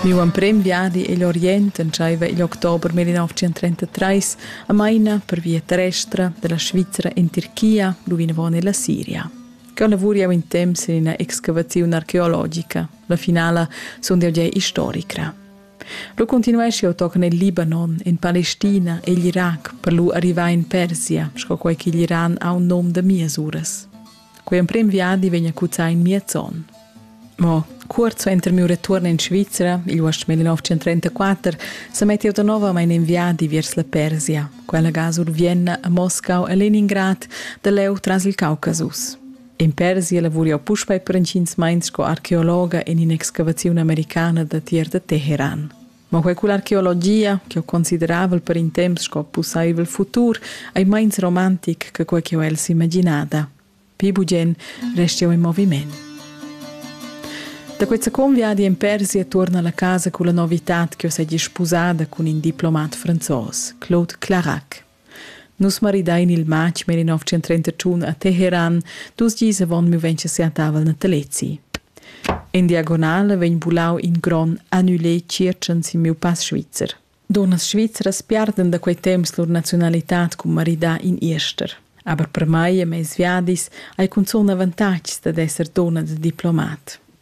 Miu emprem viadi igl Orient entscheiva igl october millionavtschentrentatrés a Maina per via terrestra dalla Svizra en Tirchia lu vinavon ella Siria. Cheu lavur jeu in temps en ina excavaziun archeologica. La finala sundel jeu historicra. Lu continuesch jeu tochen el Libanon, en Palestina e igl Irac per lu arrivar en Persia, sco quei ch'igl Iran ha un num da mias uras. Quei emprem viadi vegn a cuzzar in miez onn. Mo Cuort suenter miu retuorn in Svizra, il uost 1934, sa mettiu da novamein in viadi viers la Persia, quella gasur Vienna, a Moscau e Leningrad, da leu tras il Caucasus. In Persia lavuriu puspei per intgins meins sco archeologa en in'excavaziun americana da tier da Teheran. Ma quei cull'archeologia, che ho consideravel per in temps sco pussaivel futur, ei meins romantic che quei che ho el s'imaginada. Pi bugen resti eu in moviment. Da quei second viadi in Persia tuorna alla casa culla novità che ho segi sposada cun in diplomat franzos, Claude Clarac. Nus maridain il matg mer in 1931 a Teheran, dus gis avon mi vegn siatavel natalezi. In diagonale vegn bulau in gron annulé circen sin miu pass svizzer. Dunnas svizzeras piarden da quei temps lur nazionalitad cun maridar in Irster. Aber per mai e mes viadis hai cunzun avantatgs dad esser donna da diplomat.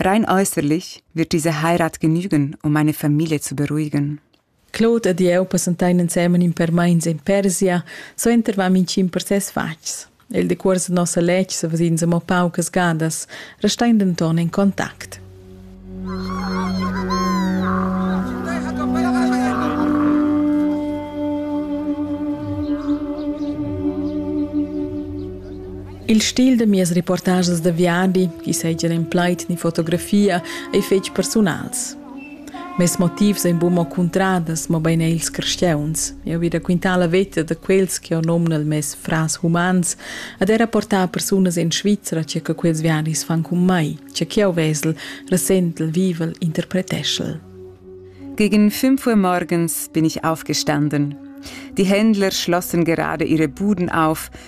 Rein äußerlich wird diese Heirat genügen, um meine Familie zu beruhigen. Claude ed jeu passentein ensemen in per meins en Persia, suenter vam in cin per ses fatgs. Il decuors de nossa letg se vesins amo paucas gadas, restein denton en contact. Il stil da mias reportages da viadi, chi seigien en plaid ni fotografia, ei fetg persunals. Mes motivs ein buca mo cuntradas, mobein er ils crescheuns. Eu vi raquintar la veta da quels che ho nomnal mes fras humans ad era portar persunas in Svizzera che che quels viadis fan con mai, che che eu vesel, resentl, vivel, interpreteschel. Gegen 5 Uhr morgens bin ich aufgestanden. Die Händler schlossen gerade ihre Buden auf,